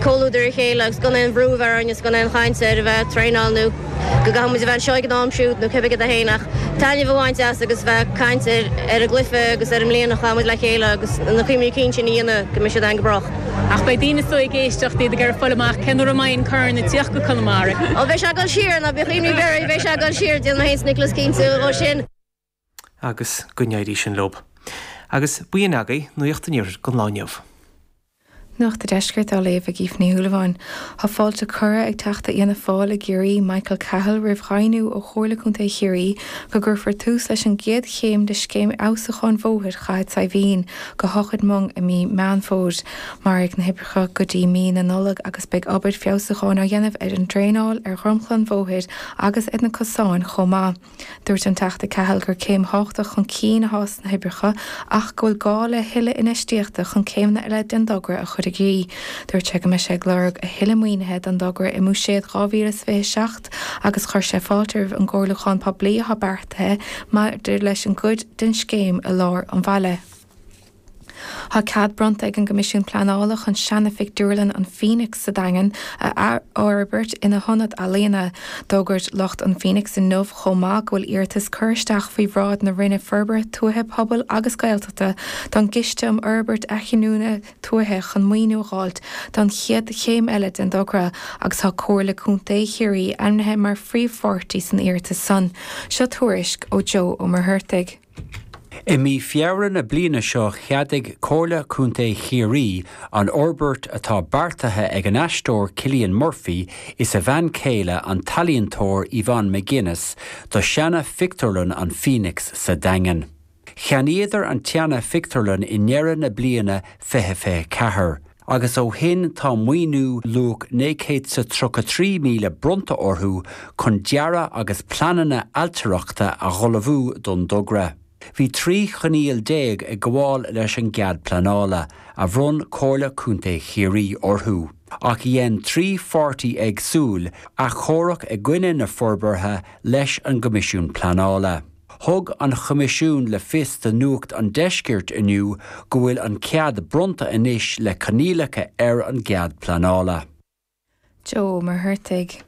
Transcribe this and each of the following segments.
comhluadar a chéile agus gan aon bhrú a bheith orainn agus gan aon chaint ar a bheith ag traenáil nó go gcaithfidh muid a bheith anseo ag an am siúd nó cibé céard a fhéin ach taitneamh a bhaint as agus a bheith ag caint ar an gcluiche agus ar an mbliain a chaith muid le chéile agus na cuimhní cinn sin a dhéanamh go mbeidh siad againn go brách. Ach beidh daoine soir ag éisteacht, iad ag iarraidh fáil amach cé nuair a mbeidh an corn ag tíocht go Conamara. Ó, beidh sé ag dul siar, ná bíodh imní ar bith oraibh, beidh sé ag dul siar, déanfaidh muid iarracht Nicholas cinntiú dhó sin. Agus go n-éirí sin leo. Agus b'in í agaibh, nuaíocht an Iarthair don lá inniu. Nuacht a' Deiscirt á léamh ag Aoife Ní Shúilleabháin. Tá fáilte curtha ag Teachta Fhianna Fáil i gCiarraí, Michael Cahill roimh dheimhniú ó Chomhairle Contae Chiarraí go gcuirfear tús leis an gcéad chéim de scéim fheabhsúcháin bhóthair Chathair Saidhbhín go hOchaid Mong i mí Meán Fómhair. Mairfidh na hoibreacha go dtí mí na Nollag agus beidh obair feabhsúcháin á dhéanamh ar an draenáil, ar dhromchla an bhóthair agus ar na cosáin chomh maith. Dúirt an Teachta Cahill gur céim thábhachtach chun cinn atá sna hoibreacha ach go bhfuil gá le tuilleadh infheistíochta chun céimeanna eile den dtogra a chur i gcrích. Dúirt sé go mbeidh sé ag lorg a thuilleadh maoinithe don dtogra i mBuiséad 2027 agus chuir sé fáilte roimh an gcomhairliúchán poiblí atá beartaithe maidir leis an gcuid den scéim i lár an bhaile. Tá cead bronnta ag an gCoimisiún Pleanála chun seanaphictiúrlann an Phoenix sa Daingean a athfhorbairt ina hionad ealaíona. D'fhógair lucht an Phoenix inniu chomh maith go bhfuil iarratas curtha isteach faoi bhráid na Roinne Forbartha Tuaithe, Pobail agus Gaeltachta don gCiste um Fhorbairt Athghiniúna Tuaithe chun maoiniú a dh'fháilt don chéad chéim eile den togra agus tá Comhairle Contae Chiarraí ainmnithe mar phríomhpháirtí san iarratas san. Seo tuairisc ó Joe Ó Muircheartaigh. I mí Feabhra na bliana seo cheadaigh Comhairle Contae Chiarraí an fhorbairt atá beartaithe ag an aisteoir Cillian Murphy is a bhean céile an t-ealaíontóir Yvonne McGuinness do seana phictiúrlann an Phoenix sa Daingean. Cheannaíodar an tseana phictiúrlann i ndeireadh na bliana fiche fiche ceathair. agus ó shin tá maoiniú luach €933,000 bronnta orthu chun dearadh agus pleananna ailtireachta a hullmhú don dtogra. Bhí 13 choinníoll ag gabháil leis an gcead pleanála, a bhronn Comhairle Contae Chiarraí orthu, ach dhein trí pháirtí éagsúil achomharc i gcoinne na forbartha leis an gCoimisiún Pleanála. Thug an Choimisiún le fios do Nuacht an Deiscirt inniu go bhfuil an cead bronnta anois le coinníollacha ar an gcead pleanála. Joe Ó Muircheartaigh.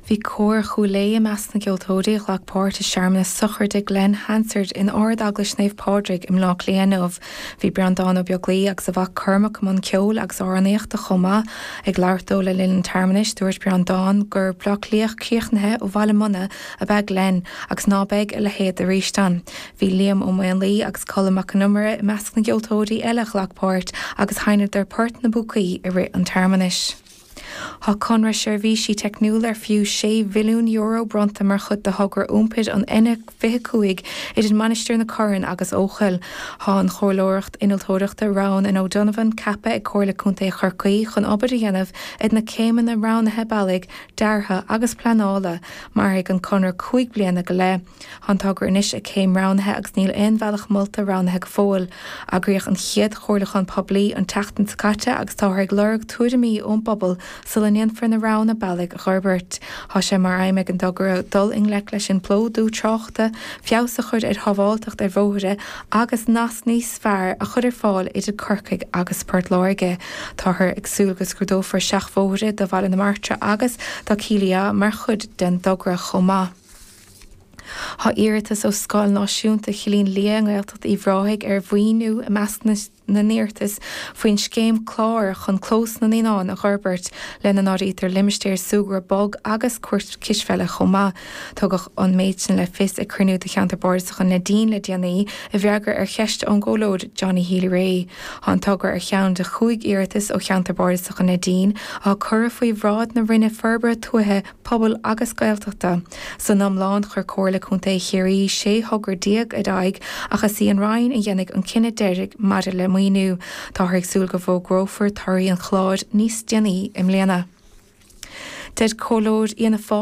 Bhí cór Chúil Aodha i measc na gceoltóirí a ghlac páirt i searmanas sochraide Glen Hansard in Ard Eaglais Naomh Pádraig i mBleá Cliath inniu. Bhí Breandán Ó Beaglaoi agus a mhac Cormac i mbun ceoil agus amhránaíochta chomh maith. Ag labhairt dó le linn an tsearmanais dúirt Breandán gur Bleá Cliathach críochnaithe ó Bhaile Munna, ab ea Glenn agus ná beidh a leithéid arís ann. Bhí Liam Ó Maonlaí agus Colm Mac Con Iomaire i measc na gceoltóirí eile a ghlac páirt agus sheinneadar Port na bPúcaí i rith an tsearmanais. Tá conradh seirbhísí teicniúla ar fiú €6 mhilliún bronnta mar chuid de thogra iompair an N25 idir Mainistir na Corann agus Eochaill. Tá an chomhairleoireacht innealtóireachta Roughan and O'Donovan ceaptha ag Comhairle Contae Chorcaí chun obair a dhéanamh ar na céimeanna roghnaithe bealaigh deartha agus pleanála. Mairfidh an conradh cúig bliana go leith. Tá an togra anois ag céim roghnaithe agus níl aon bhealach molta roghnaithe go fóill. Eagraíodh an chéad chomhairliúchán poiblí an tseachtain seo caite agus táthar ag lorg tuairimí ón bpobal sula ndéanfar na roghanna bealaigh a fhorbairt. Tá sé mar aidhm ag an dtogra dul i ngleic leis an bplódú tráchta, feabhas a chur ar shábháilteacht ar bhóithre, agus nasc níos fearr a chur ar fáil idir Corcaigh agus Port Láirge. Táthar ag súil go scrúdófar seachbhóithre do Bhaile na Martra agus do Chill Ia mar chuid den dtogra chomh maith. Tá iarratas ó Scoil Náisiúnta Chillín Liath i nGaeltacht Uíbh Ráthaigh ar mhaoiniú i measc na. na n-iarratas faoin scéim CLÁR chun clós na naíonán a fhorbairt, lena n-áirítear limistéar súgartha bog agus cúirt chispheile chomh maith. Tugadh an méid sin le fios ag cruinniú de cheantar Bardasach an Neidín le déanaí, i bhfreagra ar cheist ón gcomhairleoir Johnny Healy-Rae. Tá an togra ar cheann de chúig iarratas ó cheantar Bardasach an Neidín, a cuireadh faoi bhráid na Roinne Forbartha Tuaithe, Pobail agus Gaeltachta. San iomlán, chuir Comhairle Contae Chiarraí 16 thogra ar aghaidh ach is í an Roinn a dhéanfaidh an cinneadh deiridh maidir le maoiniú. Táthar ag súil go bhfógrófar torthaí an chláir níos déanaí i mbliana. Deir comhairleoir Fhianna Fáil,